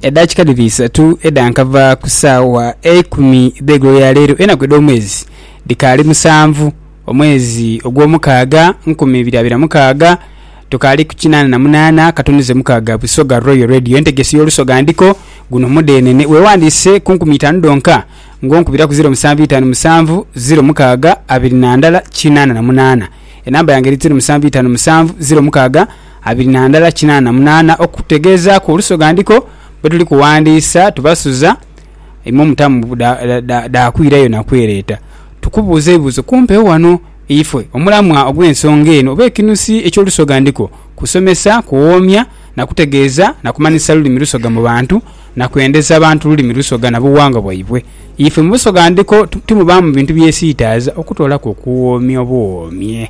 edakika dhiri isatu edha nkava ku saawa eikumi dh'eigulo lya leero enaku edh'omwezi dhikaali musanvu omwezi ogw'omukaaga nkumi ibiri abiri na mukaaga tukaali ku kinaana na munaana katunduze mukaaga busoga royal radio entegesi y'olusoga ndiko guno mudhenene weewandiise ku nkumi itaanu dhonka ng'onkubira ku ziro musanvu itaanu musanvu ziro mukaaga abiri na ndala kinaana na munaana enamba yange eri ziro musanvu itaanu musanvu ziro mukaaga abiri na ndala kinaana munaana okutegeezaaku olusoghandhiko bwe tuli kuwandiisa tubasuza imwe omutamu dha kwirayo na kwereeta tukubuuza ebibuuzo kumpewo wano. Ife omulamwa ogw'ensonga eno oba ekinusi eky'olusoghandhiko kusomesa, kuwoomya na kutegeeza na kumanhisa lulimi lusoga mu bantu na kwendeza bantu lulimi lusoga na buwangwa bwaibwe. Ife mu busoghandhiko timubaamu bintu byesiitaaza okutoolaku okuwoomya obuwoomye.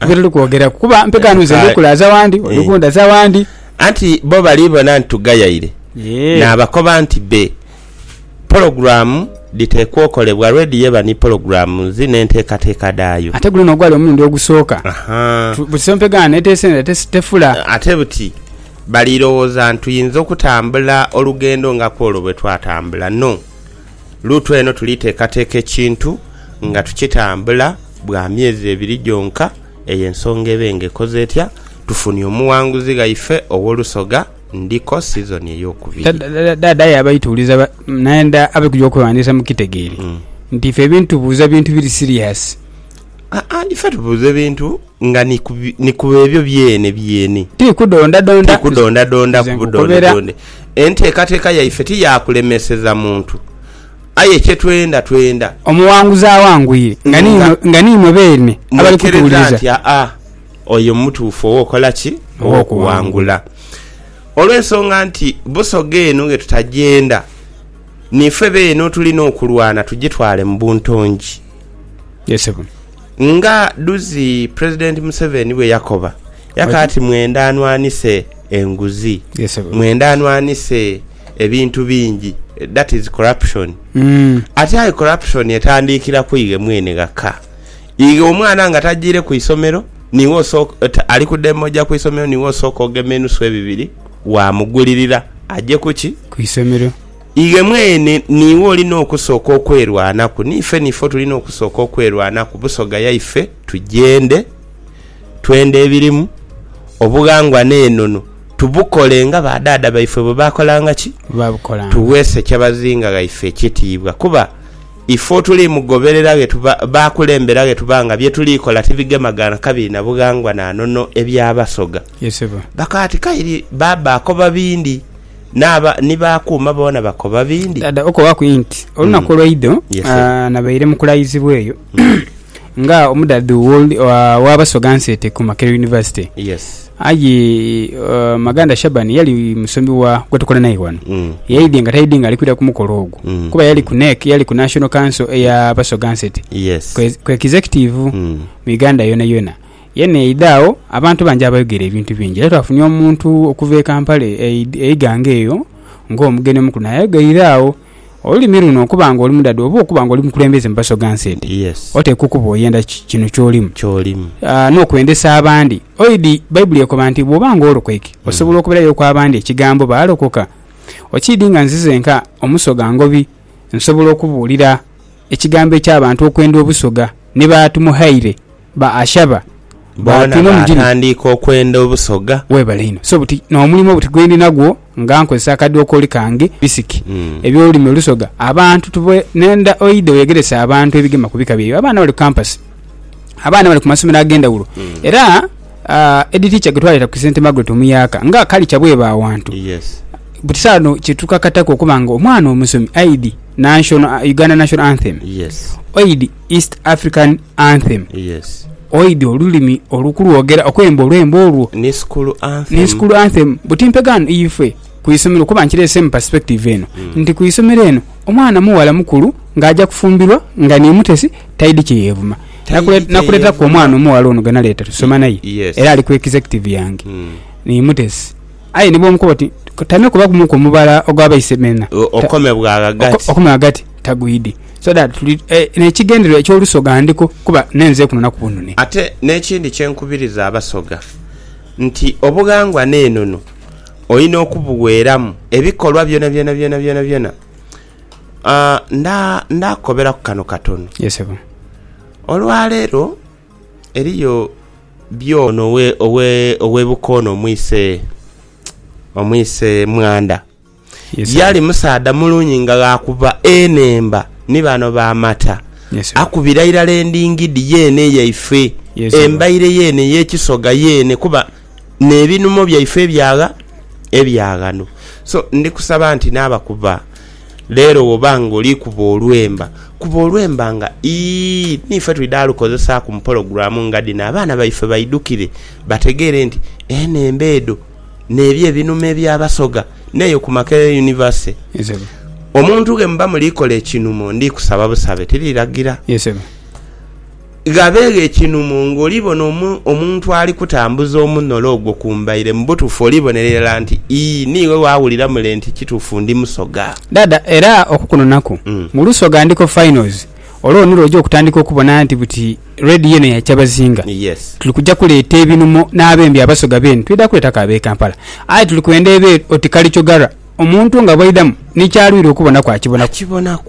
Nibyo tuli kwogeraku kuba mpeta ghano nze ndi kulaaza wandi, oli kundaza wandi. Anti bo bali bona nti tugayaire, naabakoba nti be pologulaamu dhiteekwa okolebwa lwedhi yeba ni pologulaamu dhi n'enteekateeka dhaayo. Ate guno n'ogwali omulundi ogusooka. Buti mpeta ghano eteese nera tefula. Ate buti bali lowooza nti tuyinza okutambula olugendo nga kw'olwo bwe twatambula. No. Luutu eno tuli teekateeka ekintu nga tukitambula bwa myezi ebiri gyonka, eyo ensonga ebe nga ekoze etya, tufunie omughanguzi ghaife ow'olusoga Ndiko sizoni ey'okubiri. Dhaadha aye abaita uliza naye nda abe kuja okweghandiisa mukitegeere nti ife ebintubuuza bintu biri siriyasi. Aa, ife tubuuza ebintu nga ni ku bi- ni ku ebyo byene byene. Ti kudondadonda. Ti kudondadonda Nze ku nkukobera. budondedonde. Enteekateeka yaife ti ya kulemeseza muntu. Aye kye twenda, twenda. Omuwanguzi awangwire. Nga ni Nga- imwe- nga ni imwe beene abali Mwekereza kutuwuliriza. nti aa, oyo mutuufu ow'okukola ki? Ow'okuwangula. Olw'ensonga nti Busoga eno ghe tutagyenda, niife beene otulina okulwana tugitwale mu buntongi. Nga dhuzi Pulezidenti Museveni bwe yakoba, yaka ati mwendha nwanhise enguzi, mwendha nwanhise ebintu bingi that is corruption. Ati aye corruption etandiikira ku ighe mwene ghaka. Ighe omwana nga tajiire ku isomero, niiwe osooka, ali ku demo oja ku isomero niiwe osooka ogema enusu ebibiri waamugulirira aje ku ki? Ku isomero. Iwe mwene niiwe olina okusooka okwerwanaku. Niife niife otulina okusooka okwerwanaku Busoga yaife tugyende, twende ebirimu, obughangwa n'enono tubukole nga ba dhaadha baife bwe baakolanga ki? Tughe Ssekyabazinga ghaife ekitiibwa kuba ife otuli mugoberera ghe tuba, baakulembera ghe tuba nga bye tuli kola tibigemaganha kabiri na bughangwa na nono ebya Basoga. Bakaati kairi baabaakoba bindi. N'aba ni baakuuma boona bakoba bindi. Dha okobaku inti olunaku olweidho nabaire mu kulayizibwa eyo nga omudhadhu wa Basoga Nsete ku Makerere University. Aye Maganda Shaban yali musomi wa gwetukola naye ghano. Yaidhie nga taidhi nga ali kwidha ku mukolo ogwo kuba yali ku NEC, yali ku National Council eya Basoga Nsete, ku Executive mu Uganda yonayona. Ye n'eidha agho, abantu bangi abayogera ebintu bingi. Era twafunye omuntu okuva e Kampala eighanga eyo ng'omugeni omukulu naye ayogeire agho. Olulimi luno okuba nga oli mudhadhu oba okuba nga oli mukulembeze mu Basoga Nsete, oteekwa okuba oyenda kino ky'olimu n'okwendesa abandi. Oidhi Baibuli ekoba nti, Bw'oba ng'olokoike, osobola okubirayoku abandi ekigambo baalokoka? Okiidhi nga nzize nka Omusoga Ngobi nsobola okubuulira ekigambo eky'abantu okwenda Obusoga ni baatumuhaire? Ba Ashaba bona baatandiika okwenda obusoga. Weebale inho. So buti n'omulimo buti gwendi nagwo nga nkozesa akadokoli kange bisiki eby'olulimi olusoga abantu tube nenda oidha oyegerese abantu ebigema ku bika byaibwe. Abaana bali ku kampasi, abaana bali ku masomero ag'endhawulo era Head Teacher gwe twaleeta ku St Margaret Omuyaaka nga kalica bweba awantu buti sawa dhino kye tukakataku okuba nga omwana omusomi aidhi National, Uganda National Anthem oidhi. East African Anthem. Yes. Oidhi olulimi olukulwogera okwemba olwembo olwo. Ni school anthem. Ni school anthem. Buti mpegaano ife ku isomero kuba nkireese mu perspective eno mm. nti ku isomero eno omwana muwala mukulu ng'aja kufumbirwa nga ni mutesi taidi kye yeevuma nakuleta ku omwana omuwala ono gwe naleeta tusoma naye yes. era ali ku executive yange mm. ni mutesi Aye ni bw'omukoba oti, Tame kubagumuku omubala ogwa baise beena, okome bwa ghagati. Okome ghagati, tagwidi. So that tuli n'ekigendererwa eky'olusoga ndiko kuba nenze kuno na kubunune. Ate n'ekindi kye nkubiriza abasoga nti obughangwa n'enono olina okubuweeramu ebikolwa byonabyona byonabyona. Nda, nda kukoberaku kano katono. Ye ssebo. Olwaleero eriyo. byo. Ono owe Bukoona omwise omwise Mwandha yali musaadha mulungi nga ghaakuba enhemba ni bano ba Mata. Akubira irala endingidi yeene eyaife, embaire yeene ey'ekisoga yeene kuba n'ebinumo byaife ebyagha ebya ghano. So ndi kusaba nti n'abakuba. Leero bw'oba ng'oli kuba olwemba, kuba olwemba nga ii n'ife twidha lukozesaaku mu pologulaamu nga dhino abaana baife baidhukire bategeere nti eno emba edho n'ebyo ebinuma ebya Basoga n'eyo ku Makerere University. Omuntu ghe muba muli kola ekinumo ndi kusaba busabe tiri lagira. ghabeegho ekinhumo ng'oli bona omuntu ali kutambuza omunholo ogwo ku mbaire, mu butuufu olibonera irala nti, Ii, niiwe waawulira mule nti kituufu ndi Musoga. Dhaadha, era okukunonaku mu Lusoga ndiko finals, olwo nilwo oja okutandika okubona nti buti Red yeene ya Kyabazinga. Yes. Tuli kuja kuleeta ebinhumo n'abembi Abasoga beene, twidha kuleetaku ab'e Kampala. Aye tuli kwenda ebweru oti Kalichogarra. Omuntu nga bw'aidhamu ni ky'alwire okubonaku akibonaku.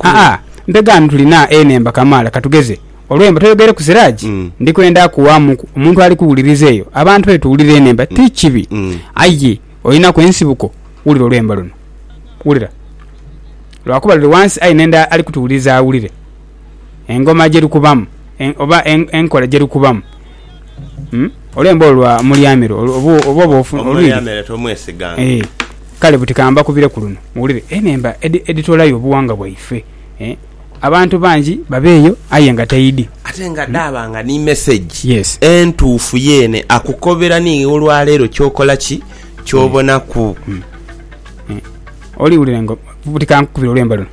Aa, mpegaano tulina enhemba kamaala. Ka tugeze, olwemba toyogereku Siraji, ndi kwenda kuwaamuku omuntu ali kuwuliriza eyo. Abantu baidha tuwulira enhemba, ti kibi. Aye olinaku ensibuko, wulira olwemba luno. Wulira. Lwakuba luli wansi aye n'enda ali kutuwuliriza awulire. engoma gyerikubamu oba enkola gyerikubamu olemba olwo lwa mulyamiro oba oba olwiri kale buti kambakubire ku luno muwulire enhemba edhitolayo obuwangwa bwaife abantu bangi babe eyo aye nga taidi ate nga dhaaba nga ni mesegi entuufu yeene akukobera ni olwaleero kyokola ki kyobonaku oli wulira buti kankukubire olwemba luno.